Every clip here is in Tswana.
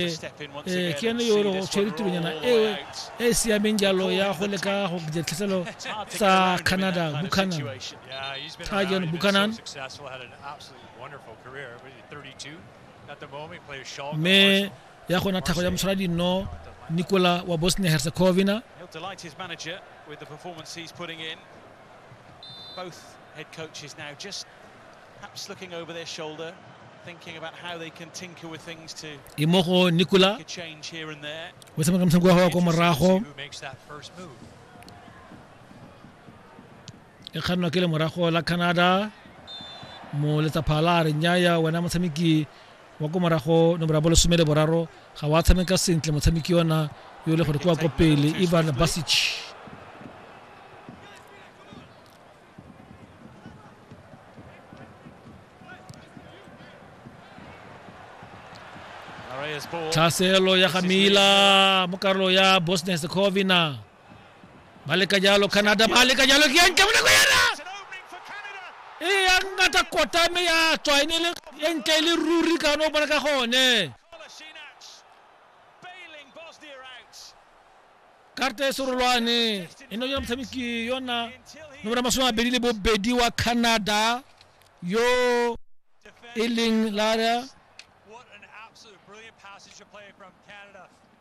ke yone yo o tshwere tironyana eo e e siameng jalo ya go leka go dira tlhaselo tsa canada buchanan tajon buchanan mme ya gona thago ya mosala dinno nicola wa bosnia herzegovina both head coaches now just Perhaps looking over their shoulder, thinking about how they can tinker with things to e mo go nicola make a change here and there. o tshameka motshameko wa gago kwa morago Who makes that first move? e kgannwa ke le morago la canada mo letsapha la re nyaya wena motshameki wa ko morago nomoro ya bo lesome le boraro ga wa tshameka sentle motshameki yona yo e le gore ke wa ko pele ivan basic Naray's ball. tlhaselo ya ga mila mo karolo ya bosnia secovina ba leka jalo canada ba leka jalo ke yantle mo nako yana It's an opening for Canada. e ya ngata kota mme ya tswa e ne e le e ntle e le ruri ka no bona ka gone karata e serolwane e nna yona motshameki yona nomoro masome a mabedi le bobedi wa canada yo e leng la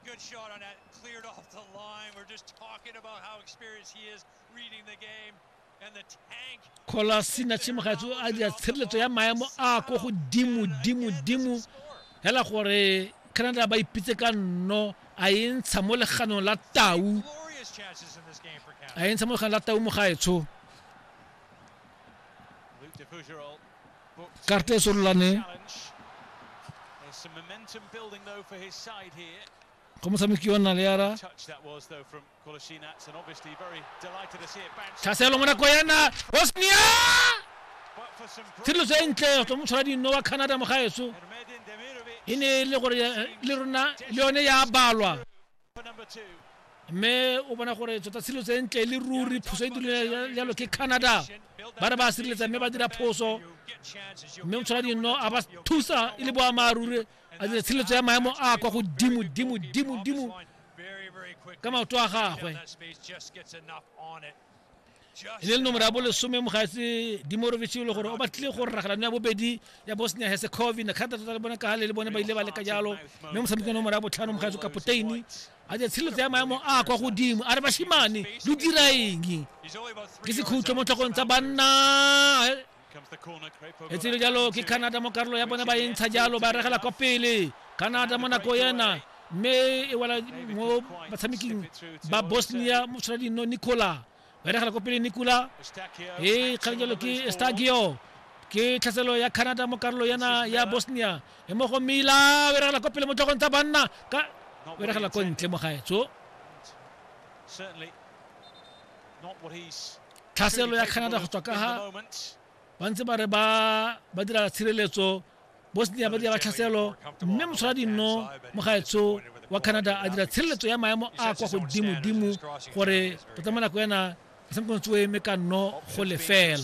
Good shot on that, cleared off the line. We're just talking about how experienced he is reading the game. kgolasi na tshimagaetso a dira tshireletso ya maemo a ko godimo dimo dimo hela gore canada ba ipitse ka nno a e ntsha mo leganong la tau a e ntsha mo leganong la tau mogaetsho karte e sorolane go motshameki wa naleara tlhaselo mo nako yana osnia tshiriso e ntle tswa motlhola dinno wa canada mogaeso e ne e le gore le rona le yone ya balwa mme o bona gore tsota tshilo tse ntle le ruri phoso e dirile jalo ke canada ba re ba sireletsa mme ba dira phoso mme motshola dino a ba thusa e le boammaaruri a dira tshireletso ya maemo a kwa godimo dimo dimo dimo ka maoto a gagwe e le le nomoro ya bolesome mogatse dimorovic e le gore o batlile go rragelano ya bobedi ya bosnia herzegovina kgata tota le bone ka gale le bone ba ile ba leka jalo mme motshameki nomoro ya botlhano mogatse kapoteini a je tshireletso ya maemo a kwa godimo a re bashimane lo diraeng ke sekhutlo mo tlhogong tsa banna e tsile jalo ke canada mo karolo ya bone ba e ntsha jalo ba regela kwa pele canada mo nako ena mme e wela mo batshameking ba bosnia motsholadino nicola ba regela kwa pele nicola e kgang jalo ke stagio ke tlhaselo ya canada mo karolo yana ya bosnia e mo go mila o regela kwa pele mo tlhogong tsa banna ka o regela ko ntle mo gaetso tlhaselo ya canada go tswa ka ga ba ntse ba re ba ba dira tshireletso bosnia ba dira ba tlhaselo mme motshola dinno mo gaetsho wa canada a dira tshireletso ya maemo a kwa godimodimo gore go tsamaya nako ena motshamekong tsoe mme ka nno go lefela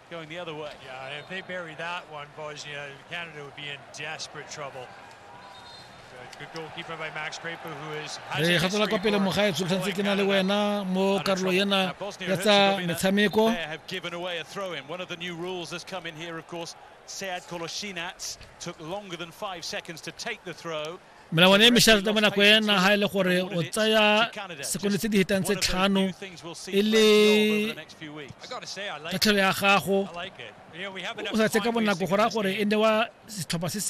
going the other way. Yeah, if they bury that one, Bosnia, Canada would be in desperate trouble. re ga tswela kwa pele mogaetso tshwanetse ke na le wena mo karolo ena ya tsa metshameko Sead Kolasinac took longer than five seconds to take the throw. melawana e mešate ka bonako ena ga e le gore o tsaya sekono tse di hetang tse tlhano e le tatlhelo ya gago o sa tse ka bonako go raya gore e newa setlhopha se se